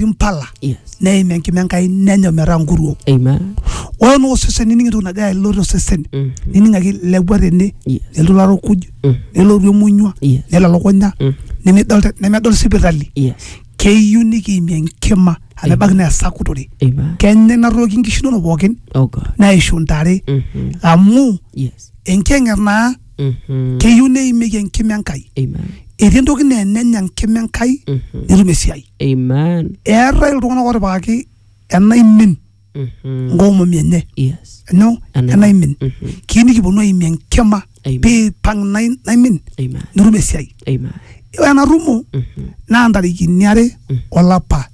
mpala Yes. neim enkima enkai nenya metaa nkuruo Amen. ore naa osesen nining entoki nagira alo tosesen Mhm. nining ake ilepua tene Yes. nelotu larukuj Mhm. nelotu emunyua Yes. nelo elukunya Mhm. nemedol te- nemedol sipitali Yes. keyieu nikiimie enkima amu ebaiki naa esakutore Amen. kenya ina toki nkishu inonok pookin Oh God. neishu ntare Mhm. amu Yes. enkiyang'et naa Mhm. keyieu neimieki enkima enkai Amen. etii entoki naa enenya enkima enkai Mhm. netum esiai Amen. eetae iltung'anak otipikaki enaimin Mhm. nkomomi enye Yes. nyoo Ena- enaimin Mhm. kiyieu nikiponu aimie enkima Amen. piipang nai- naimin Amen. nitum esiai Amen. ore ena rumo Mhm. naa ntarikini are olapa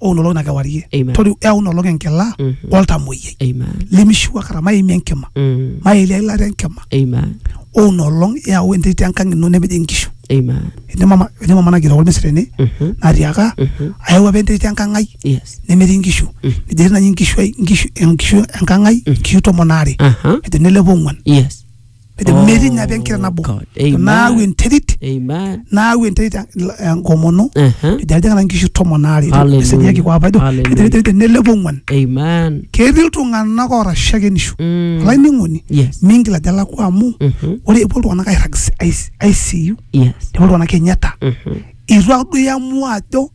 o nolong na kewarie Amen. toriu eau nolong enkila Mhm. oltamoyiai Amen. limishiu akata maimie enkima Mm. maelia ilata enkima Amen. o nolong eau enterit enkang ino nepej inkishu Amen. etii mama etii mama nagira ormesi tene Mhm. natiaka Mhm. ayau apa enterit enkang ai Yes. nemetii nkishu Mhm. nejo etii nai nkishu ai nkishu enkishu enkang ai Mhm. nkishu tomon aare Aha. ejo nelepo ong'uan Yes. Pede Oh, metii ina apa enkira nabo. God. Amen. Naau enterit, Amen. naau enterit en- enkomono. Uh-huh. Ejo aljing'ana nkishu tomon aare. Hallelujah. Eseriaki kwa apa ejo, Hallelujah. ejo enterit nelepo ong'uan. Amen. Ketii iltung'anak oora shakenisho. Mm. Olainining'oni, Yes. mingil ajo alakua amu Mhm. ore epuo iltung'anak airrag si- ICU, Yes. epuo iltung'anak Kenyatta. Mhm. Itu ake duo iamua ajo